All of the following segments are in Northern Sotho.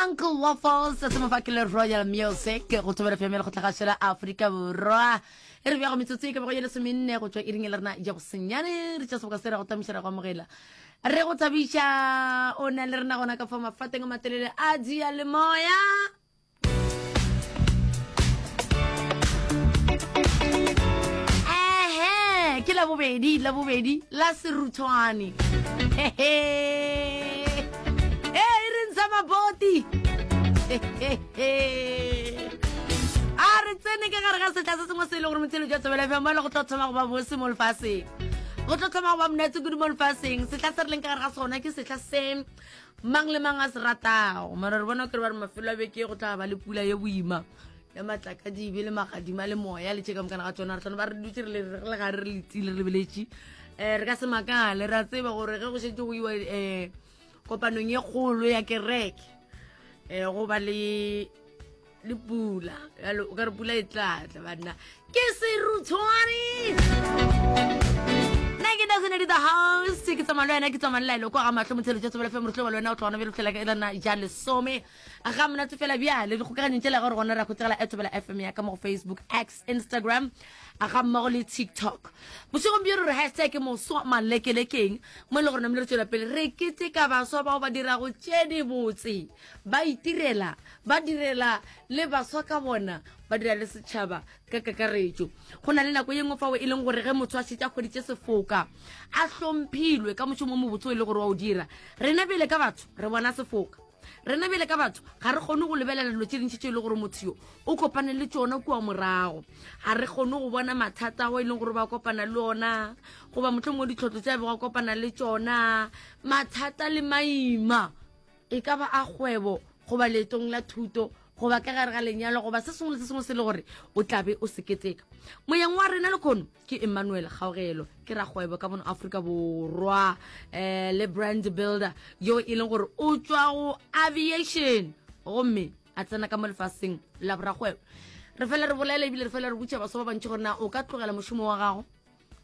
uncle waffles se mo fa ke le royal music go thobela fm le go tlhagašela aforika borwa e re bjago metsotso e ka bego ye lesomenne go tšwa e ring e le rena ja go senyane re tša seboka se ra go tamiša ra go amogela re go thabiša o na le rena gona ka fa mafateng a matelele a dia le moya ehe ke la bobedi la bobedi la seruthwane hehe e e re ntsha maboti a re tsene ka gare ga setla se sengwe se e le gore motshelo jwa tsebela fm mo e le go tlo thoma go ba bose mo lefaseng go tlo thoma go ba monatse kudu mo lefaseng setla se re leng ka gare ga sona ke setla se mang le mang a se ratago mara re bona kere ba re mafelo a beke go tla ba le pula ye boima ya matlakadibe le magadima le moya le tšeka mokana ga tsona re tlhone ba re dutse re le gare re letsile re lebeletše um eh, re ka se makale re a tseba gore ge go šetse go iwa um kopanong ye kgolo ya kereke um eh, go ba le le pula yalo o ka re pula e tlatla banna ke serutshwane nna ke nagonedi the house ke tsamalo wena ke tsamalo la eloko ga matlho motsheletša tsobola fe morutlo wa le wena o tlogona bjelo fela ka elana ja lesome ga monate fela bjale dikgokaganyong tšela gore gona ra khutsegela etobela fm ya ka mo go facebook x instagram a ga mmago le tiktok bošegong bjo re re hashtag ke moswa malekelekeng mo e le gore namele re tswela pele re kete ka baswa bao ba dirago tše dibotse ba itirela ba direla le baswa ka bona ba dira le setšhaba ka kakaretšo go na le nako ye nngwe fao e leng gore ge motho a šetša kgweditše sefoka a hlomphilwe ka mošomo o mobotse o e le gore wa o dira rena bele ka batho re bona sefoka rena bjale ka batho ga re kgone go lebelela dilo tse dintšhi tse e le gore motho yo o kopane le tsona kua morago ga re kgone go bona mathata ao e leng gore ba kopana le ona goba motlho mongwe ditlhotlho tse a bego a kopana le tsona mathata le maima e ka ba a kgwebo goba leetong la thuto goba ka gare ga lenyalo goba se sengwe le se sengwe se le gore o tlabe o seketeka moyeng wa rena le kgono ke emmanuel kgaogelo ke rakgwebo ka mono aforika borwa um le brand builder yo e leng gore o tswa go aviation gomme a tsena ka mo lefaseng la boragwebo re fele re bolela ebile re fele re butša baso ba bantši gore na o ka tlogela mošomo wa gago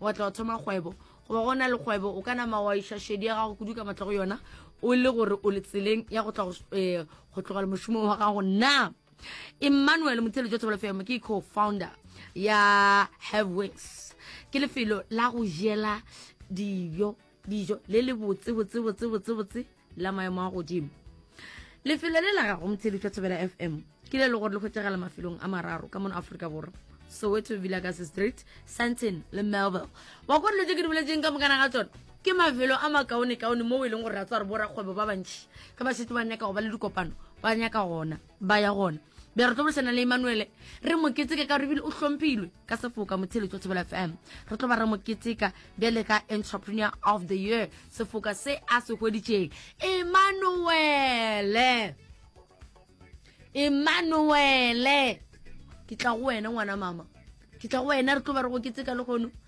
wa tla wa thoma kgwebo goba go na le kgwebo o ka nama wa iša šedi ya gago kudu ka matla go yona o le gore o le tseleng ya go tla go eh, tlogela mošomo wa gago na emmanuel motheletšo thobela fm ke co-founder ya have wings ke lefelo la go jela dijo dijo le le botse botse botse botse botse la maemo a godimo lefelo le la gago motheletšo thobela fm ke le le gore le kgwetsegela mafelong a mararo ka mono aforika borwa soweto villagas street santon le melville wa kore dilo tse ke di boletseng ka mokana ga tsone ke mafelo a makaonekaone moo e leng gore ra tswa re borakgwebo ba bantšhi ka ba setse ba nyaka go ba le dikopano ba nyaka gona ba ya gona be re tlo bolesana le emanuele re mo keteka ka gore ebile o hlomphilwe ka sefoka motshele tswa thobela fm re tlo ba re mo keteka bjale ka entrepreneur of the year sefoka se a se hweditšeng emanuele emanuele ke tla go wena ngwana mama ke tla go wena re tlo ba re go keteka le gono